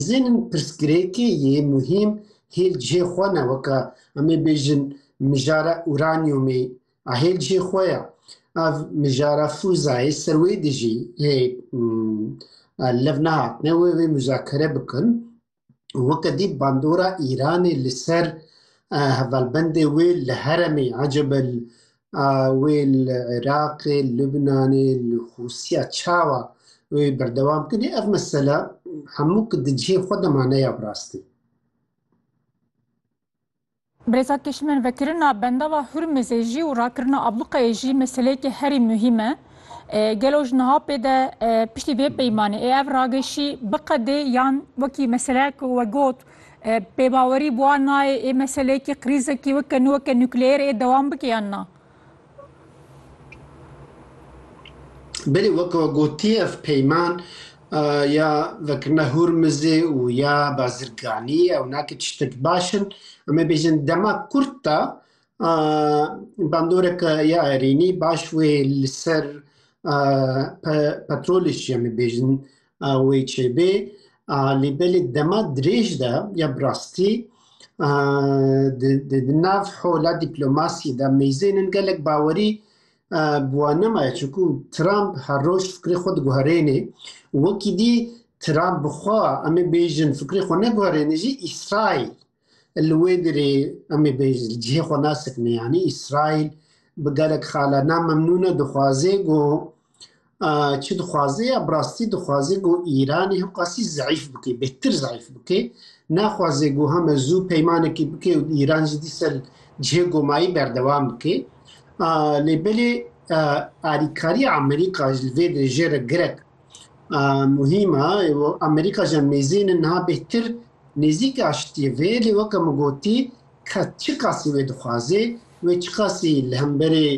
Dizênim pirsgirêkê yê muhîm hêl cihê xwe ne weka em ê bêjin mijara uranyumê a hêl cihê xwe ya. Ev mijara fuzayê ser wê de jî hê lev nehatine wê wê muzakere bikin. Weke dî bandora Îranê li ser hevalbendê wê li heremê Ecebel Wê li Iraqê, li Lubnanê, li Xûsiya çawa wê berdewam bikin? Ev mesela hemû ki di cihê xwe de ma neya bi rastî. Birêza Kişmen, vekirina bendava Hurmizê jî û rakirina abluqeyê jî meseleyekê herî muhîm e. Gelo ji niha pê de piştî vê peymanê ê ev rageşî biqedê yan wekî meseleyek ku we got Pêbawerî bi wan nayê ê meseleyekî krîzekî weke nû weke nukleer ê dewam bike yan na? Belê weke gotiye ev peyman ya vekirina Hûrmizê û ya Bazirganî ew nake tiştek baş in. Em ê bêjin dema kurt de bandoreke ya Erînî baş wê li ser petrolê jî em ê bêjin wê çêbê lê belê dema dirêj de ya bi rastî di nav hola dîplomasiyê de mêzênin gelek bawerî bi wan nemaye çunku Trump her roj fikrê xwe diguherêne û wekî dî Trump bi xwe em ê bêjin fikrê xwe neguherêne jî Îsraîl Li wê derê em ê bê cihê xwe nasekine yanî Îsraîl bi gelek xala namemnûn e dixwaze ku çi dixwaze ya bi rastî dixwaze ku Îranê him qasî zeîf bike bêhtir zeîf bike naxwaze ku heme zû peymanekê bike û Îran jî dîsa li cihê gomayî berdewam bike lê belê alîkariya Amerîka ji vê derê jê re girek muhîma Amerîka ji mêzînin niha bêhtir nêzîk aştiyê vê lê weke min gotî ke çi qasî wê dixwazê wê çi qasî li hemberê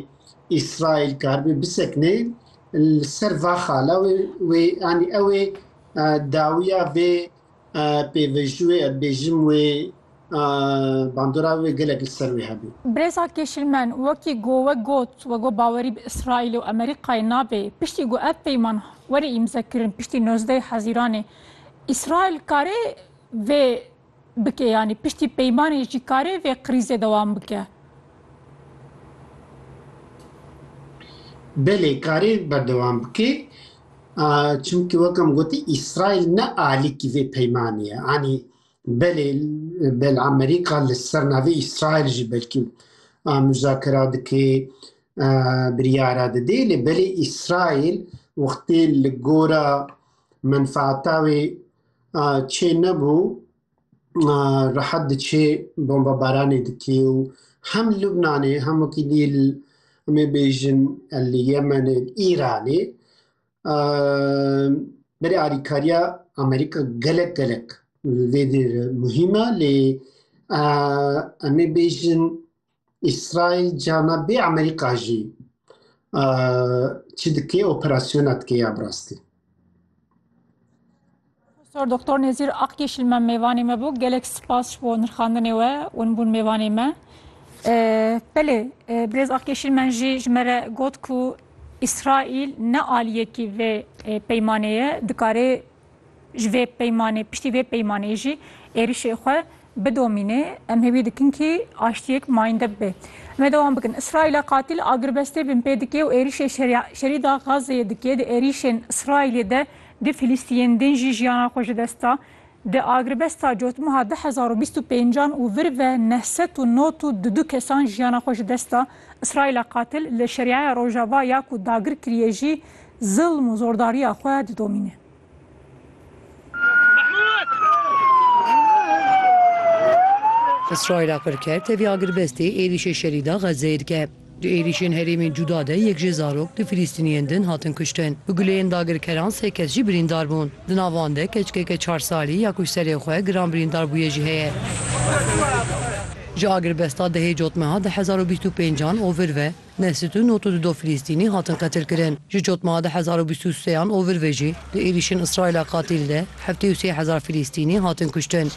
İsrail karibê bisekne li ser vaxala wê wê anî ew ê dawiya vê pêvejî wê em bêjim wê bandora wê gelek li ser wê hebû. Brêza Kêşilmen wekî go we got we go bawerî bi Îsraîlê û Amerîkayê nabe piştî go ev peyman were îmze kirin piştî nozdeh Hezîranê Îsraîl kare vê bike yanî piştî peymanê jî kare vê krîzê dewam bike. Belê karê berdewam bike Çimkî wek em gotî Îsraîl ne alîkî vê peymanê ye. Anî belê bel Amerîka li ser navê Îsraîl jî belkî muzakera dikê biryara didê lê belê Îsraîl wextê li gora menfaata wê çê nebû rehet diçê bombebaranê dikê û hem li Lubnanê hem wekî dî li em ê bêjin li Yemenê û Îranê berê alîkariya Amerîka gelek gelek li vê dêr muhîm e lê em ê bêjin İsrail cana bê Amerika jî çi dikê operasyona dikê ya bi rastî. Profesör Doktor Nezir Akyeşil me mêvanê me bû. Gelek spas ji bo nirxandinê we û bûn mêvanê me. Belê Birêz Akyeşil men jî ji me re got ku İsrail ne aliyekî vê peymanê ye dikarê Ji vê peymanê piştî vê peymanê jî êrişê xwe bidomîne. Em hêvî dikin kî aştiyek mayinde bibe. Em ê dewam bikin. Îsraîla qatîl agirbestê bin pê dike û êrişê şerî da Xazzeyê dike. Di êrişên Îsraîlê de du Filîstiyên din jî jiyana xwe ji dest da. Di agirbesta cotmeha du hezar û bîst û pêncan û vir ve neh sed û nod û du du kesan jiyana xwe ji dest da. Îsraîla qatîl li Şerîaya Rojava ya ku dagir kiriye jî zilm û zordariya xwe didomîne. Îsraîla qir kir tevî agirbestê êrîşê şerî da Xezzeyê dike. Di êrîşên herêmên cuda de yek jê zarok di Filîstîniyên din hatin kuştin. Bi guleyên dagirkeran sê kes jî birîndar bûn. Di nav wan de keçikeke çar salî ya ku ji serê xwe giran birîndar bûye jî heye. Ji agirbesta dehê cotmeha di hezar û bîst û pêncan ovir ve, Neh sed û nod û du do Filistînî hatin qetilkirin. Ji cotmeha du hezar û bîst û sê an û vir ve jî di êrîşên Îsraîla qatîl de heftê û sê hezar Filistînî hatin kuştin.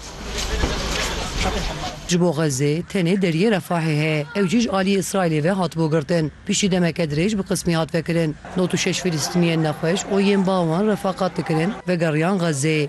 Ji bo Xezzê tenê deriyê Refahê heye, ew jî ji aliyê Îsraîlê ve hatibû girtin. Piştî demeke dirêj bi qismî hat vekirin. Nod û şeş Filistîniyên nexweş û yên ba wan refaqat dikirin vegeriyan Xezzê.